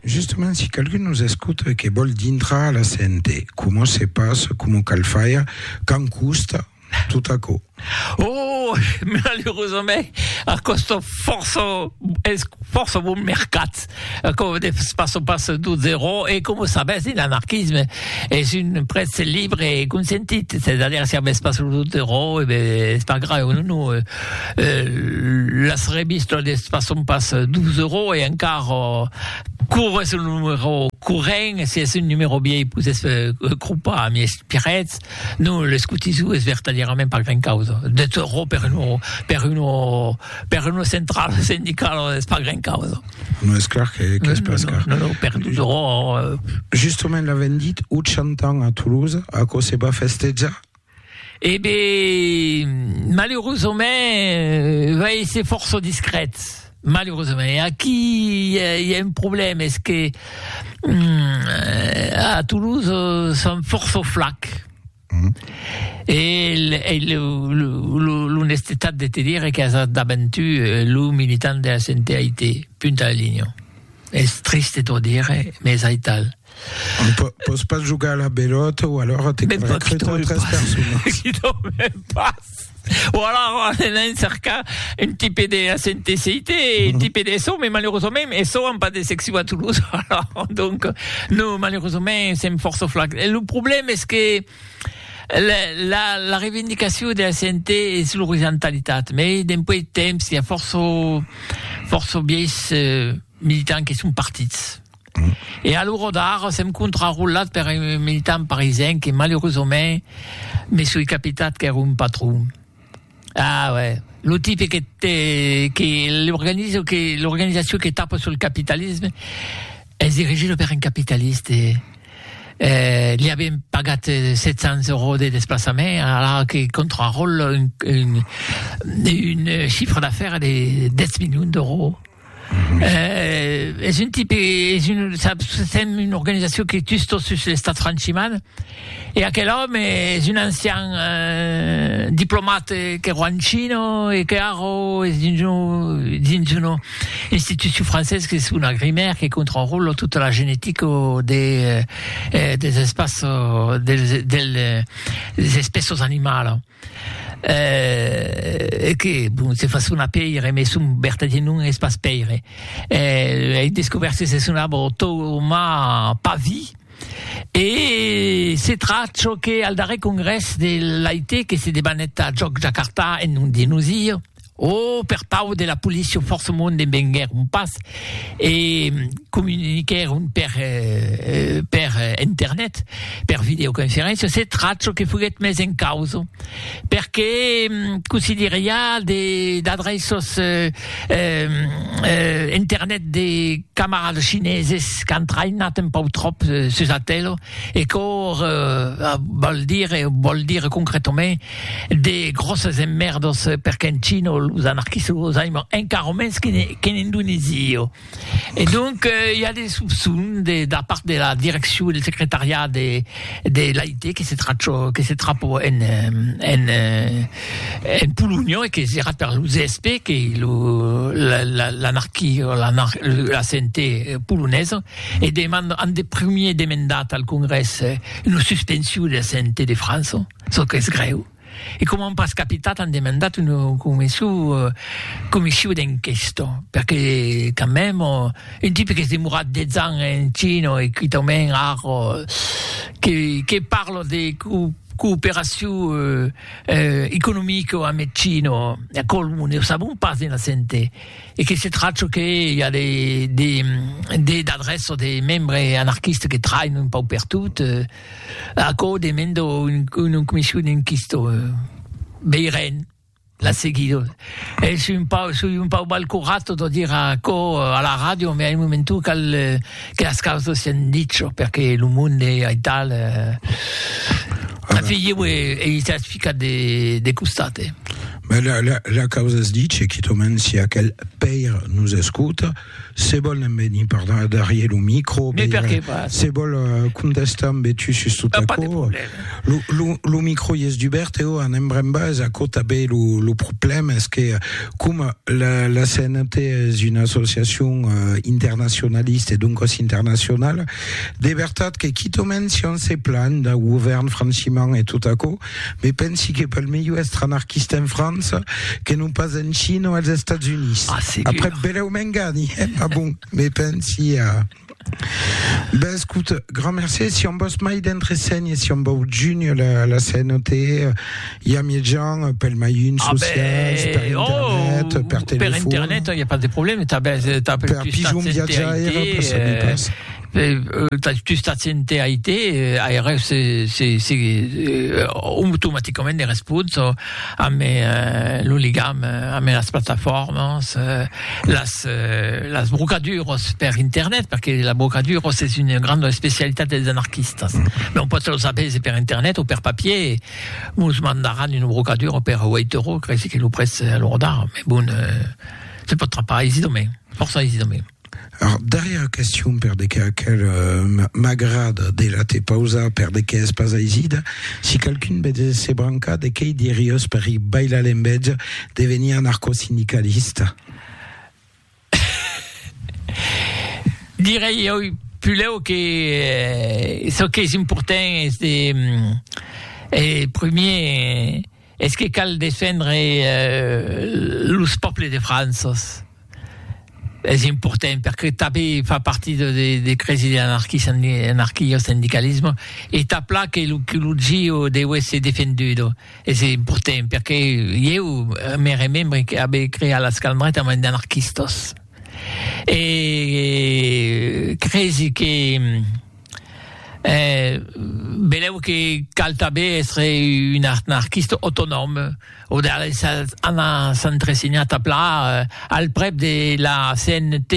Justement si qualqu'un nos escota e que vòl dintrar a la CNT, coma se passa, coma cal faire, quand costa, tot aquò? Oh! Malerosament, a còsta fòrça, es fòrça bon mercat. Aquò de pas o pas d'o zerò e com o sabètz un anarquisme es un prètz libre e consentit, c'est à dire si avètz pas lo zerò e ben es pas grave o non o las revistas de pas son pas d'o zerò e encara cor es un numero corrent si es un numero viei pus es cropar a miei espirètz. Non, l'escotismo es vertadièrament pas grand causa, de torró per uno, per uno, per uno central sindicalo es pas grand causa. Non, es clar que, que es pas car. Non, non, per torró... Justement l'avèm dit, o chantam a Toulouse, aquò se va festejar? E ben, maleurosament, vai èsser fòrça discrèt. Malerosament, aquí i a, i a un problèma, es que mm, a Toulouse euh, son força flac. Mm. E, el, el, l'honestetat de te dire que has daventu euh, lo militant de la CNTAIT, punt a la linha. Es triste t'ho dire, mais es aital. Pòs pas jogar a la pelòta o alòra te caldrà cretar tres personas. Qui dorme pas. O alòra anar en cercar un tipe de HNTCIT, un tipe d'ESO, mès malerosament ESO an pas de seccion a Toulouse, alòra donc non, malerosament sèm fòrça flacs. E lo problèma es que la revendicacion de HNT es l'orizontalitat, mès dempuèi de temps i a fòrça fòrça vièis militants que son partits. E a l'ora d'ara sèm contrarolat per un militant parisenc que malurosament me soi capitat qu'ère un patron. Ah uè, lo tipe que te que l'organizo que l'organizacion que tapa sul capitalisme es dirigida per un capitaliste. Eh li avien pagat 700 euros de desplaçament alara que contraròla un un un chiffre d'affaires de 10 milions d'euros. Eh, es un tipe, es un, saps, sèm una organizacion que tus tot sus l'estat franchiman, e aquel òme es un ancian eh, diplomat que ro en China e que ara es dins un, dins una institucion francés qu'es una grimèr que contròla tota la genetica de, eh, des espaços, dels, del, des espèços animalas. Eh, e que, bon, se fa sonar pèire, mès son vertadièr nom es pas pèire. Eh, ei descobèrt que s'es un arbre Thouma Pavi, e se tracha çò qu'es al darrèr congrès de l'AIT que se debanèt a Jòc Jakarta en nom de nosir, O per pau de la policia forcemont ne venguèron pas e comuniquèron per, per internet, per videoconferéncia, se tracho que foguèt mes en causa, perque cossí dire i a de d'adreços internet de camarades chineses qu'an traïnat un pau tròp sus atélo e quò vòl dire, vòl dire concretament, De gròsses emmèrdos perque en China los anarquistas los aiman encara mens qu'en Indonèsia. E donc i a de sopçons de la part de la direccion del secretariat de l'AIT que se trapò en Polonha e que serà per lo CSP que l'anarquia o la CNT polonesa e an de primièr demandat al Congrès una suspension de la CNT de França. Çò qu'es grèu, e coma an pas capitat an demandat una comission d'enquesta, perque quand même un tipe qu'es demorat 10 ans en China e quitament ar que parle de cooperacion economica amb eth China, aquò ne o sabon pas de naissente, e que se tracha que i a des adrèças de membres anarquistes que trainon un pauc pertot. Aquò demanda un comission enquista. Veirem la seguida. Es un pau, soi un pau mal corat de dire aquò a la ràdio, mai a un moment o cal que las causas sián dichas, perque lo monde ei tal... En fi, ieu ei estat ficat de costat, eh! La causa es dicha, quitament si aquel pair nos escota. Se vòl en venir per darrier lo micro, Mais per que pas? se vòl euh, contestar en betu sus tot Pas de aquò, problème. lo, lo, lo micro i es dubèrt, eu an embrembas aquò tanben, lo, lo problème es que coma la, la CNT es una associacion euh, internacionalista e doncas internacionala, de vertat que quitament si on se planh dau govèrn franchiment e tot aquò, Me pensi que pel melhor èstre anarquista en França que non pas en China o als Estats Units. Ah, segur. Après, belèu m'engani, eh? Ma bon, me pensi a... Ben, escut, grand merci. Si on vos mai d'entresenhe, si on vau junir la, la CNOT, i a miei gens, pel mai un Ah, socials, per ben, oh, internet, per per telefon. internet, il n'y a pas de problème. T'as, ben, t'as per plus pigeon t'as viatjaire, CNTIT, per saber eh, pas. tu estàs sente a IT, aireu se se se automaticament de respons amb lo ligam amb las plataformas, las las brocaduras per internet, perque las brocaduras es una granda especialitat dels anarquistas, non pòt los avèse per internet o per papier, mos mandaràn una brocadura per 8 euros, creisi que lo prètz a l'ora d'ara, me bon, se pòt trapar aisidament, fòrça aisidament. Ar darrièra question per de qu'a quel m'agrada de la te pausar per de qu'a es pas aisida, si qualqu'un betz se brancar de quei diriós per i bailar l'embetz de venir anarcosindicalista? Direi oi pulèu que çò qu'es important es de primier Es que cal defendre los pòples de Franças, es important perque tabe fa parti de cresi de l'anarquio-sindicalismo e tà pla que lo culutgio deu èsser defendut, es important perque ieu me remembre que abe creat la Scalmreta amant d'anarquistas e cresi que Eh, benlèu que cal tanben èstre un anarquista autonòm, o de les anar s'entresenhar tà plan al prèp de la CNT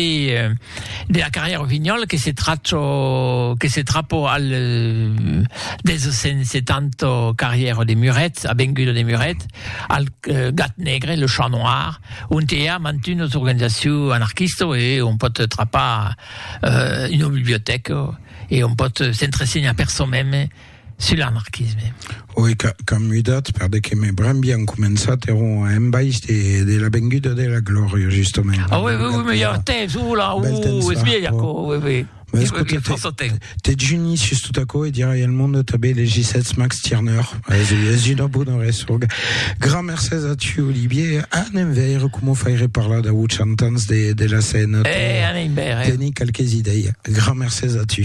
de la carrièra Rossignol que se tracho, que se trapo al 270 carrièra de Muret, avenguda de Muret, al Gat Negre, le Chat Noir, ont i a mantunos organizaciu anarquista e on pòt trapar euh, una bibliotèca e on pòt s'entresenhar per çò mème sul anarquisme. Oui, ca, ca mudat, perde que me brembian començat era en baix de, de la venguda de la glòria, justament. Ah oui, oui, oui, mais il y a temps, oula, ouh, es vieille, oui, oui. Mais écoutez, Te juni sus tot aquò e dirai al monde tanben les Gisèts Max Tirneur. Es, es una bona resonga. Gran mercés a tu, Olivier. Anem veire coma faire parlar dau 80 ans de, de la Sena. Eh, anem veire. Teni quelques idei. Gran mercés a tu.